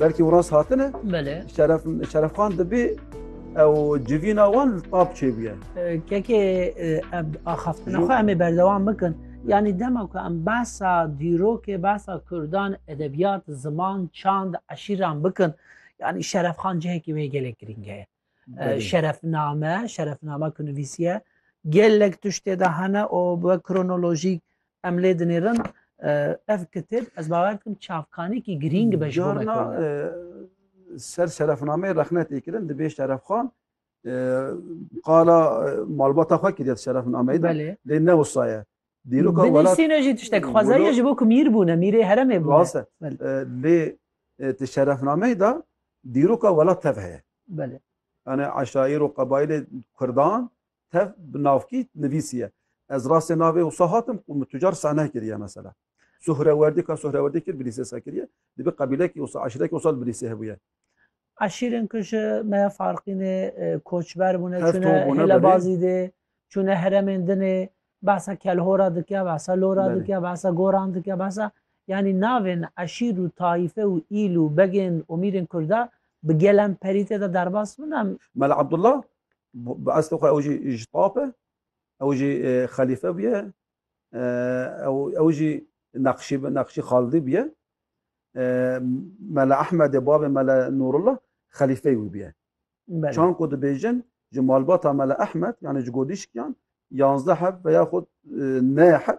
Belkî û rast hatine Belê. şeref şerefxan dibê ew civîna wan li tab çêbûye. Kekê ev axaftina xwe em ê berdewam bikin. Yanî dema ku em behsa dîrokê behsa Kurdan edebiyat, ziman, çand, eşîran bikin. Yanî şerefxan cihekî wê gelek girîng heye. Şerefname, şerefname ku nivîsiye gelek tiştê de hene û bi kronolojîk Em lê dinêrin ev kitêb ez bawer dikim çavkanekî girîng be ji bo me. Ser şerefnameyê rexne tê kirin di bêj Şerefxan qala malbata xwe kiriye şerefnameyê de lê ne wisa ye. Dîroka welat Binivîsîne jî tiştek xwezayî ji bo ku mîr bûne mîrê heremê bûne. Rast e lê di şerefnameyê de dîroka welat tev heye. Belê. Yani eşaîr û qebaîlê kurdan Tev bi navkî nivîsiye. Ez rastê navê wisa hatim û min tucar sehne kiriye mesela. Suhrewerdî ka Suhrewerdî kir bilîsê sa kiriye. Dibê qebîlekî wisa eşîrekî wisa li bilîsê hebûye. Eşîrên ku ji me farqîne koçber bûne çûne Hêlebazî dê, çûne heremên din ê, behsa Kelhora dike, behsa Lora dike, behsa Goran dike, behsa yanî navên eşîr û tayîfe û îl û begên û mîrên Kurda bi gelem perî tê de derbas bûne. Mela Abdullah Bi estê xwe ew jî ji tap e, ew jî xelîfe bûye, ew jî neqşî neqşî xaldî bûye. Mele Ehmedê bavê Mele Nûrullah xelîfeyê wî bûye. Çan ku dibêjin ji malbata Mele Ehmed yanê ji godîşkiyan yanzdeh heb ve ya xwe neh heb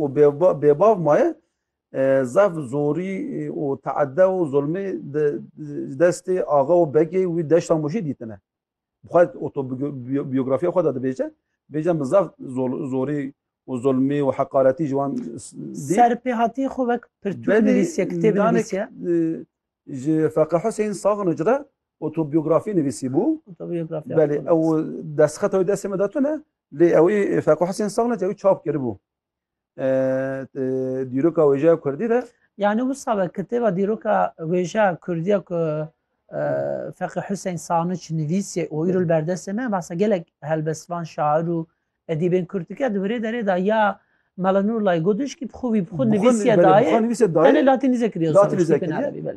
û bêbav maye zaf zorî û teedde û zulmê di destê axa û begê wî deşta Mûşê dîtine. Bi xwe otobiyografiya xwe de dibêje, bêje min zaf zorî û zulmî û heqaretî ji wan dît. Serpêhatî xwe wek pirtûk nivîsiye, kitêb nivîsiye. Ji Feqî Huseyîn Saxnic re otobiyografî nivîsîbû. Otobiyografya. Belê ew destxeta wê destê me de tune lê ewî Feqî Huseyîn Saxnic ewî çap kiribû. Dîroka wêjeya Kurdî de. Yani wisa be kitêba dîroka wêjeya Kurdî ya ku Feqî Huseyîn Saxnic nivîsî û îro li berdestê me basa gelek helbestvan şair û edîbên Kurd dike di virê derê de ya Melanurlay Goduşkî bi xwe wî bi xwe nivîsîye dayê. Tenê latînîze kiriye. Latînîze kiriye.